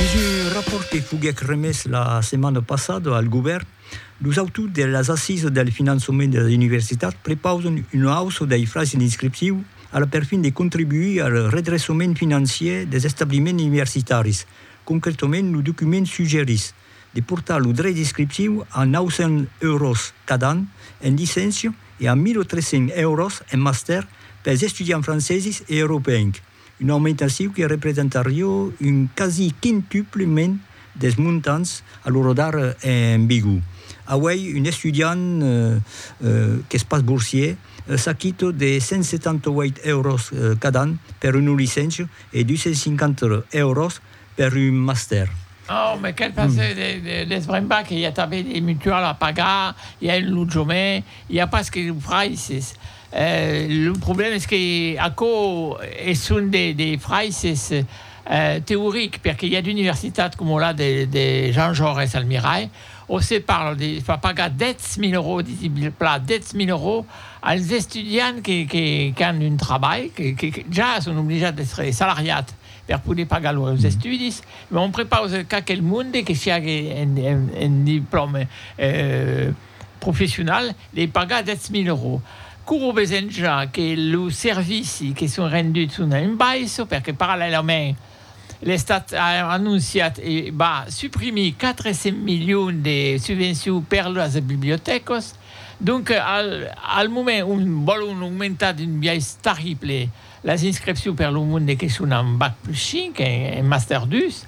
Dins un rapòrt que foguèc remés la setmana passada al govèrn, los autors de las assisas del finançament de las universitats prepausan una auça dei fraisses d'inscripciu a la perfin de contribuir al redreçament financièr dels establiments universitaris. Concretament, lo document suggerís de portar lo drech d'inscripciu a 900 euros cada an en licéncia e a 1.300 euros en mastèr pels estudiants franceses e europeencs. Una aumentaciu que representarió un quasi quintupliment des montants a lo rodar en Bigo. Auèi un estudiant qu'es pas borsier s'aquita de 178 euros cada an per una licencia e 250 euros per un mastèr. Au me quel passer de desbrembar que i a tanben de mutual a pagar, i a un lotjament, i a pas que lo fraisses. Lo problèma es que aquò es son de fraisses teoric perque i a d'universitats coma la de Jean Jaures al Mirai ont se parla de far pagar 10.000 euros, disi pla 10.000 euros, als estudiants qu'an un trabalh, que ja son oblijats d'èstre salariats. per poder pagar los estudis, mas on prepausa qu'aquel monde que siague en diplòme professional dei pagar 10.000 euros. Courro besen ja que los servicis que son renduts son en baissa, perque parallèlament l'Estat a anonciat e va suprimir 400 milions de subvencion per las bibliotècas. Donc al moment on vòlon aumentar d'un biais tarrible Las inscripcions per lo monde que son en bac plus 5 e en master 2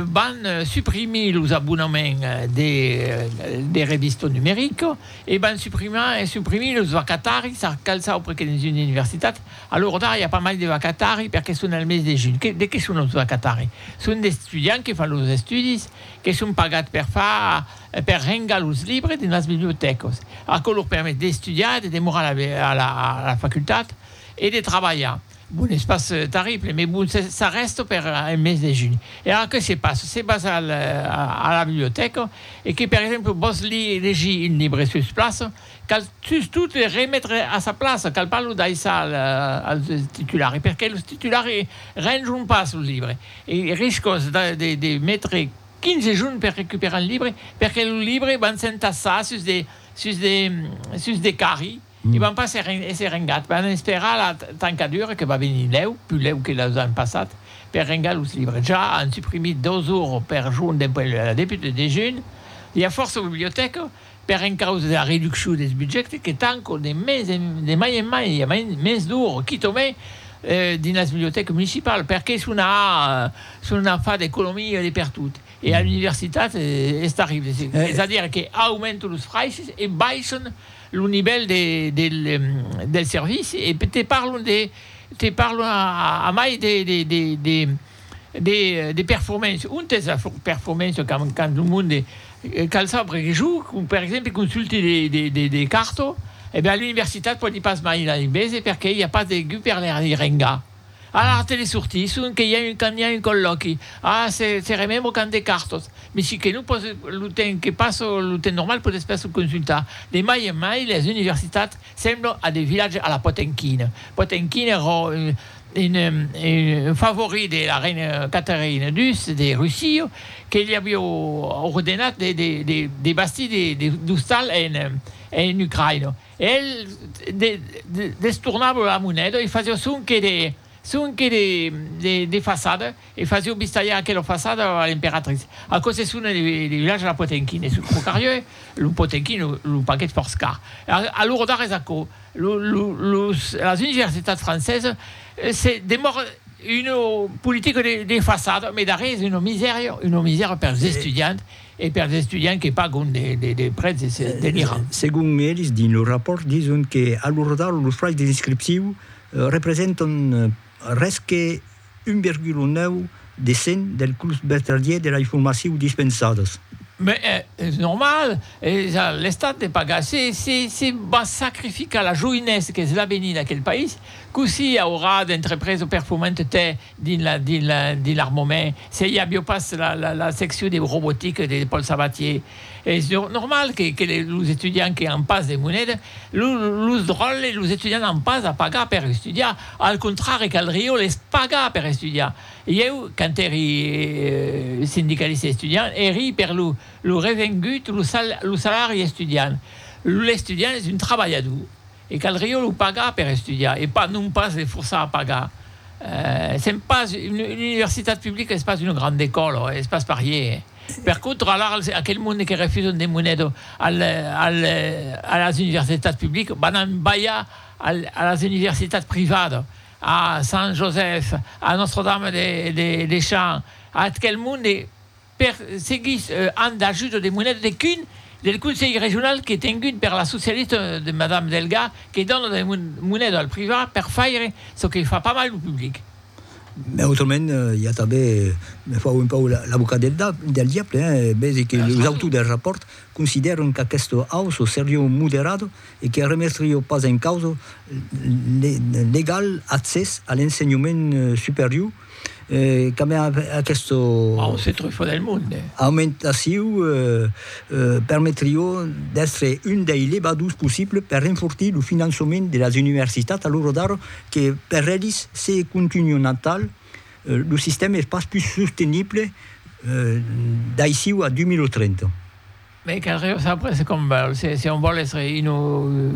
van suprimir los abonaments de revista numerica e van suprimir los vacataris a qualques aupres que dins una universitat. A l'ora d'ara i a pas mai de vacataris perque son al mes de junh. De qué son los vacataris? Son d'estudiants que fan los estudis, que son pagats per far, per rengar los libres dins las bibliotècas. Aquò lor permet d'estudiar e de demorar a la facultat. e de trabalhar. Bon, es pas terrible, mais bon, ça reste per un mes de junh. E ara que se passe? Se vas a la bibliotèca e que, per exemple, vòls legir un libre sus plaça, cal sustot le remetre a sa plaça, cal pas lo daissar al titulari, perque los titulari renjon pas los libres. E riscas de metre 15 junh per recuperar un libre, perque lo libre van s'entassar sus de carri. I van pas èsser rengats, van esperar la tancadura que va venir lèu, pus lèu que los ans passats, per rengar los libres. Ja an suprimit dos ors per jorn dempuèi la deputa de junh. I a fòrça bibliotèca, per encausa de la reduccion dels budjèctes, que tancan de mai en mai, i a mens d'ors, quitament, dins las bibliotècas municipal, perqué se n'an a far d'economia de pertot. E a l'universitat es tarrible, es a dire que aumentan los fraisses e baissan lo nivèl del servici e te parlon de te parlon a mai de performance ont es la performance quand lo monde cal saber que jo per exemple consulte de carto e ben a l'universitat pòdi pas mai la bese perque i a pas de guper de rengar Ara a telesortir, son que i a un quand i a un collòqui, ara se se remembra quand de cartos, me si que non pòs lo temps que pas lo temps normal pòs pas lo consultar, de mai en mai las universitats semblan a de vilatges a la Potemkin, Potemkin èra un un favorit de la reina Catherine ii de Russia que li aviá ordenat de de de de bastir de de d'ostal en en Ucraïna. El destornava la moneda e fasiá sonque de sonque de de de façada e fasió bistalhar aquela façada a l'emperatrice. Aquò se sona de de vilatge la potemkin e sul trocarieu lo potemkin lo lo paquet fòrç car. A a lor dar es aquò lo lo los las universitats francesa se demòra una politica de de façada, mai darrèr es una misèria una misèria pers estudiants. E pers estudiants que pagon de prètz deliran. Segon eles, dins lo rapòrt dison que a Lordau los fraisses d'inscripciu representan res que 1,9 de cent del curs vertadier de lei formaciu dispensadas. Mès es normal, es a l'Estat de pagar. Se vas sacrificar la joinessa qu'es l'avenir d'aquel país, cossí auràs d'entrepresa performanta tè Dins l'armament, se i aviá pas la seccion de robotica de Paul Sabatier, es normal que los estudiants que an pas de moneda, los dròlles, los estudiants an pas a pagar per estudiar, al contrari caldrió les pagar per estudiar. Ieu, quand èri sindicalista estudiant, èri per lo revengut, lo salari estudiant. L'estudiant es un trabalhador. E caldrió lo pagar per estudiar e pas non pas le forçar a pagar. Sèm pas una universitat publica, es pas una granda ecòla, es pas parier. Per contra, alara aquel monde que refusan de monet a las universitats publicas van an balhar a las universitats privadas, a Sant Josèf, a Nòstra Dama de Champs, a ath quel monde. Per seguir an d'ajuda de moneda de cun del conselh regional qu'es tengut per la socialista de madame Delga que dona de moneda al privat per faire çò que fa pas mal lo public. Mès autrament i a tanben, me fau un pauc l'avocat del diable, vesi que los autors del rapòrt considèran qu'aquesta auça seriá moderada e que remetriá pas en causa l'egal accès a l'ensenhament superior, Cambia aqueste. Au centre fò del monde. Aumentaciu permetrió d'èstre un dei levadurs possibles per renfortir lo finançament de las universitats a l'ora d'ara que per elis se contunhon atal lo sistèma es pas pus sostenible d'aicí a 2030. Bèi caldré o sabre se com vòl, se se on vòl èstre unu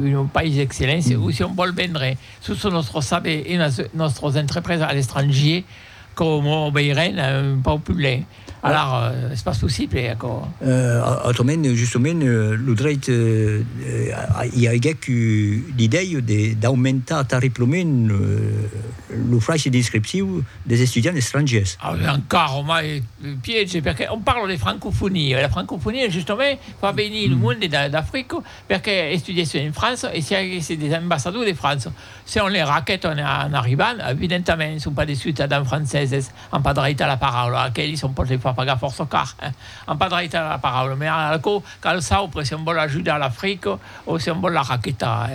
unu país d'excelléncia o se on vòl vendre sus son nòstro saber e unas nòstros entreprèses a l'estrangier, aquò mo veirèn un pauc pus lènh. Alar es pas possible aquò. Autrament, justement, lo drèit i aigèc eu l'idèia de d'aumentar tarriplament lo fraishe d'inscripciu des estudiants estrangiers. Avián carro mai Piège perque on parle de francofonia e la francofonia justament fa venir lo monde d'Africa perque estudièsse en França e siaguèsse des ambassadors de França. Se on les raquèt en arribant, evidentament son pas des ciutadans franceses, an pas dreit a la paraula, aquelis on pòt les far pagar fòrça car, an pas dreit a la paraula, mai ara aquò cal saupre se on vòl ajudar l'Africa, O se vòl la raquetar.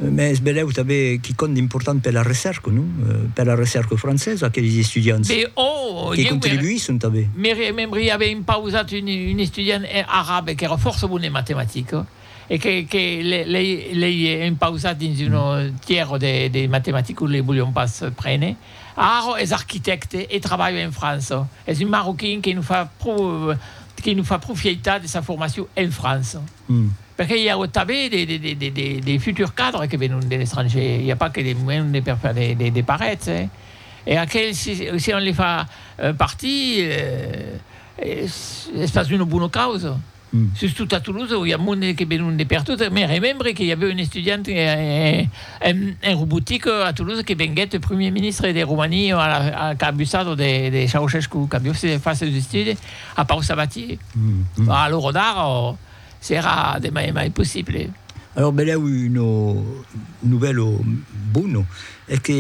Mès belèu tanben quicòm d'important per la recèrca, non? Per la recèrca francesa, aqueles estudiants. Be o! Que contribuisson tanben. Me remembri aver impausat un estudiant arabe qu'èra fòrça bon en matematica e que l'ei impausat dins una tièra de matematica que li volián pas prene. Ara es arquitècte e trabalha en França. Es un marroquin que nos fa pro, que nos fa profieitar de sa formacion en França. Perque i a tanbe de futurs cadres que venon de l'estranger, i a pas que de monde per faire de parets, e aquel si on le fa partir es pas d'una bona causa, sustot a Toulouse i a monde que venon de pertot, me remembre que i avèu un estudiant en robotique a Toulouse que venguèt premier ministre de Romania a la cabussada de Ceaușescu, qu'avió fach seus estudes. A Pau Sabatier, a l'ora d'ara o serà demà e mai possible. Alòs benlèu una novèla bona es que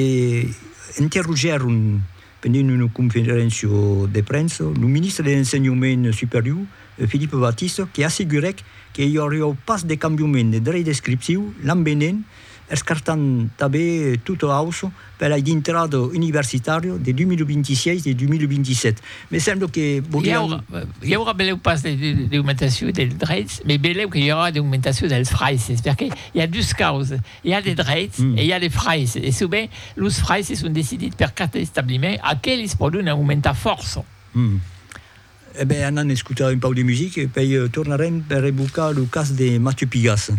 interrogèron pendent una conferéncia de premsa lo ministre de l'Ensenhament Superior, Philippe Batista, que assegurèc que i auriá pas de cambiament de drech descriptiu l'an venent escartant tanben tota auço per ai dintrada universitària de 2026 e 2027. Me sembla que volián. I aurà, beleu pas d'augmentacion dels dreits, mai beleu que i aurà d'augmentacion dels fraisses, perque i a dus causes, i a de dreits e i a de fraisses, e sovent los fraisses son decidits per cada establiment, aqueles pòdon aumentar fòrça. E ben, anam escotar un pauc de musica e pei tornarem per evocar lo cas de Mathieu Pigasse.